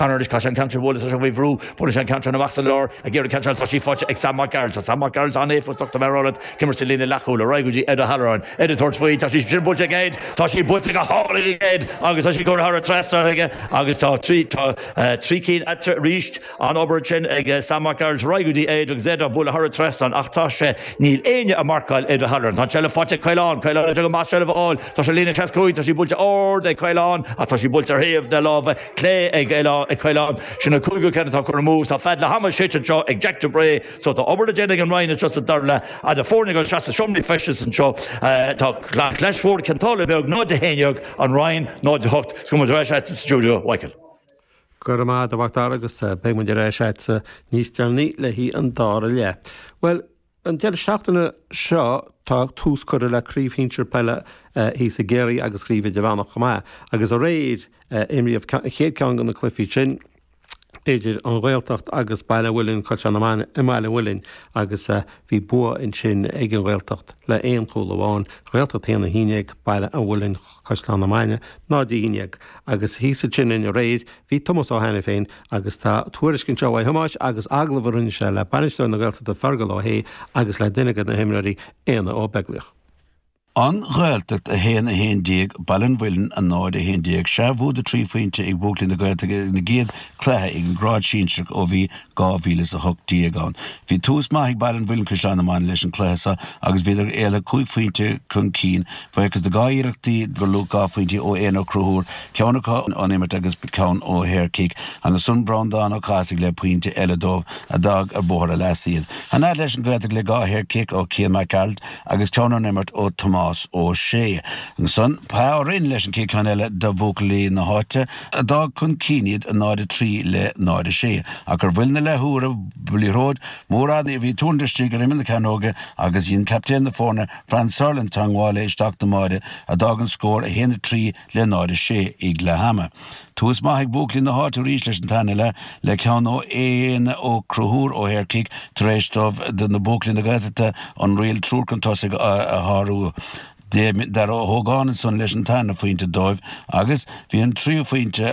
An uirlis caiséad an ceann sin a bhuaileas leis an bhfaobhrú, bhuaileas sé an ceann sin amach sa lár ag iarraidh ceann sin atá sí faighte ag Sam Mac Gearailt. Tá Sam Mac Gearailt an-éifeachtach, tá mé ag rá leat, ag imirt sa líne leathchúil, ar aghaidh go dtí Ed O'Halloran, Ed ag tabhairt faoi, tá sí sin buailte ag Ed, tá sí buailte go hálainn ag Ed agus tá sí ag tabhairt thar an trasnán aige agus tá trí, tá trí cinn eatarthu arís, an-obair ansin ag Sam Mac Gearailt, ar aghaidh go dtí Ed agus Ed á bhualadh thar an trasnán ach tá sé, níl éinne ag marcáil Ed O'Halloran. Tá an tseilbh faighte ag Caolán, Caolán ag déanamh amach seilbh a fháil, tá sé líne seasca cúig, tá sí buailte ard ag Caolán ach tá sí buailte ar thaobh na láimhe, clé ag Caolán. Sin an cúigiú ceann atá curtha amú. Tá fead leath ama séidte anseo ag Jack de Brae so tá obair le déanamh ag An Rinn anseo sa dara leath. Tá na foirne ag dul isteach sna seomraí feistis anseo tá Clais Mhór, Cionn tSáile Beag, 0, 11, An Rinn, 0, 8, Gabhfaidh muid ar ais a'dsa sa stiúideo, a Mhichíl. Go raibh maith a'd a Mhac Dara agus beidh muid ar ais a'dsa níos deireanaí le haghaidh an dara leath. Bhuel, An deireadh seachtaine seo tá tús curtha le Craobh Shinsir Peile thíos i gCiarraí agus Craobh Idirmheánach chomh maith agus aréir imríodh an chéad cheann de na cluichí sin idir An Ghaeltacht agus Baile an Mhuilinn, Caisleán na Mainge i mBaile an Mhuilinn agus bhí bua ansin ag An Ghaeltacht le aon chúl amháin, An Ghaeltacht 1, 11, Baile an Mhuilinn. Caisleán na Mainge, 0-11. Agus thíos ansin dúinn aréir bhí Tomás Ó hAiniféin agus tá tuairisc anseo uaidh Thomás agus agallamh a rinne sé le bainisteoir na Gaeltachta Fergal Ó Sé agus le duine de na himreoirí, Aodhna Ó Beaglaoich. An Ghaeltacht 1, 11 Baile an Mhuilinn, 0, 11. Sea bua de thrí phointe ag buachaillí na Gaeltachta ina gcéad cluiche ag an grád sinsearach ó bhí 2018 ann. Bhí tús maith ag Baile an Mhuilinn, Caisleán na Mainge leis an chluiche seo agus bhíodar éalaithe cúig phointe chun cinn. A bhuíochas de dhá iarrachtaí gur luach dhá phointe ó Éanna Ó Conchúir, ceann acu ón imirt agus ceann ó shaor cic. Ansan Breandán Ó Cathasaigh le pointe eile dóibh a d'fhág ar bhóthar a leasa iad. Aniar leis an nGaeltacht le dhá shaor cic ó Chian Mac Gearailt agus ceann ón imirt ó Thomás Ó Sé. Ansan Pá Ó Rinn leis an chéad cheann eile do bhuachaillí na háite. a d'fhág chun cinn iad 0 3 le 0 6, ach ar bhuille na leathuaire bhí liathróid mhór fhada a bhí tuirlingthe istigh ar imeall na cearnóige agus dhein captaen na foirne, Franz Sauerland, teangmháil léi isteach don mbáire a d'fhág an scór 1 3 le 0 6 ag leath ama. Tús maith ag buachaillí na háite arís leis an tarna leath le ceann ó Éanna Ó Conchúir ó shaorchic tar éis dóibh, na buachaillí na Gaeltachta, an Riail Triúr chun tosaigh a shárú. Dara Ó hÓgáin ansan leis an tarna phointe dóibh agus bhí an tríú phointe,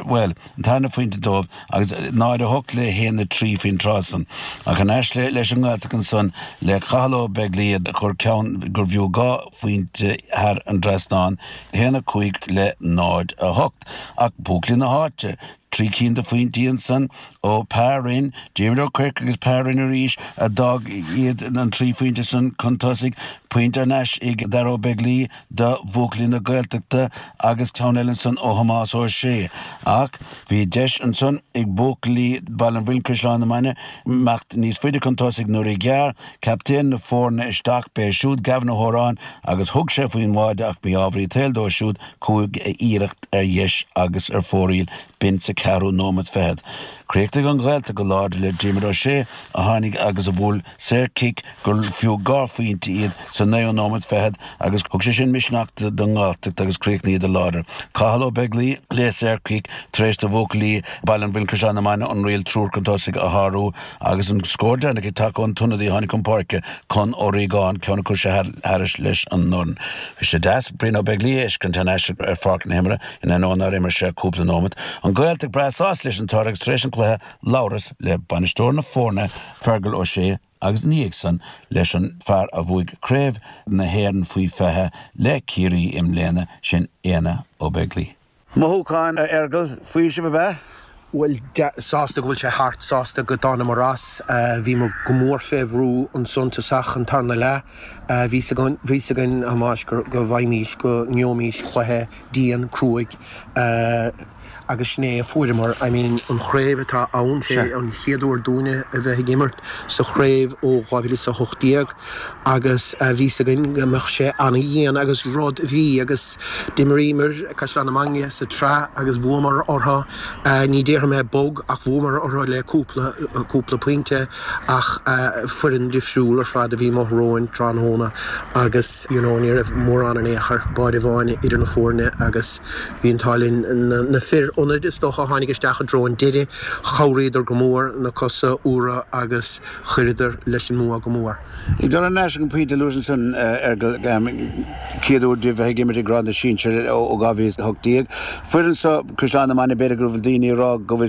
bhuel, an tarna phointe dóibh agus náid a hocht le haon a trí faoin tráth san. Ach thar n-ais leis an nGaeltacht ansan le Cathal Ó Beaglaoich a chuir ceann gurbh fhiú dhá phointe thar an dtrasnán, haon a cúig le náid a hocht. Ach buachaillí na háite, Trí cinn de phointí ansan ó Pa Rinn, Diarmuid Ó Cuirc agus Pa Rinn arís, a d'fhág iad, an trí phointe san, chun tosaigh, pointe thar n-ais ag Darragh Ó Beaglaoich do bhuachaillí na Gaeltachta agus ceann eile ansan ó Thomás Ó Sé. Ach bhí deis ansan ag buachaillí Bhaile an Mhuilinn-Caisleán na Mainge imeacht níos faide chun tosaigh nuair a ghearr Captaen na foirne isteach, b'é siúd Gavin Ó hÓráin agus thug sé faoin mbáide ach mí-ámharaí an tsaoil dó siúd chuaigh a iarracht ar dheis agus ar fóraoil b'in sa cheathrú nóimeat fichead. Chríochnaigh an Ghaeltacht go láidir le Diarmuid Ó Sé a tháinig agus a bhuail saor cic gur fiú dhá phointe iad sa naoú nóimeat fichead agus thug sé sin misneach don nGaeltacht agus chríochnaíodar láidir. Cathal Ó Beaglaoich le saor cic tar éis do bhuachaillí Bhaile an Mhuilinn-Caisleán na Mainge an riail triúr chun tosaigh a shárú. Agus an scór deireanach ag teacht ón t-ionadaí a tháinig chun páirce Con Ó Riagáin, ceann a chuir sé thairis leis an ndorn. Bhí sé deas Brian Ó Beaglaoich a fheiscint thar n-ais ar pháirc na himeartha, in ainneoin nár imir sé ach cúpla nóimeat. An Ghaeltacht breá sásta leis an toradh agus tar éis an chluiche, labhras le bainisteoir na foirne, Fergal Ó Sé agus ina dhiaidh san leis an fear a bhuaigh Craobh na hÉireann faoi 20 le Ciarraí i mbliana, sin Aodhna Ó Beaglaoich. Mothúcháin, a Fheargal, faoiseamh ab ea? Bhuel, sásta go bhfuil sé thart, sásta go dtánamar as. Bhíomar go mór fé bhrú ansan tosach an tarna leath. Bhí's againn, bhí's againn ambaist go bhfaighimís, go ngeobhaimís cluiche dian, cruaidh agus sin é a fuaireamar. I mean, an chraobh atá ann, sé an chéad uair dúinne a bheith ag imirt sa chraobh ó 2018. Agus bhí's againn go mbeadh sé ana-dhian agus rud a bhí agus d'imiríomar Caisleán na Mainge sa tsraith agus bhuamar orthu, ní déarfaidh mé bog ach bhuamar orthu le cúpla, cúpla pointe ach foireann difriúil ar fad a bhí amuigh romhainn tráthnóna agus you know ní raibh mórán in aon chor, báide amháin idir na foirne agus bhí an t-ádh linn. Na fir ionaid is dócha a tháinig isteach i dtreo an deiridh, chabhraíodar go mór, na cosa úra agus. Chuireadar leis an mbua go mór. Ag dul thar n-ais ag an bpointe a luais ansan, a Fheargal, an chéad uair díbh a bheith ag imirt i ngrád na sinsear ó 2018. Foireann seo Chaisleán na Mainge b'fhéidir go raibh daoine ag rá go bhfuil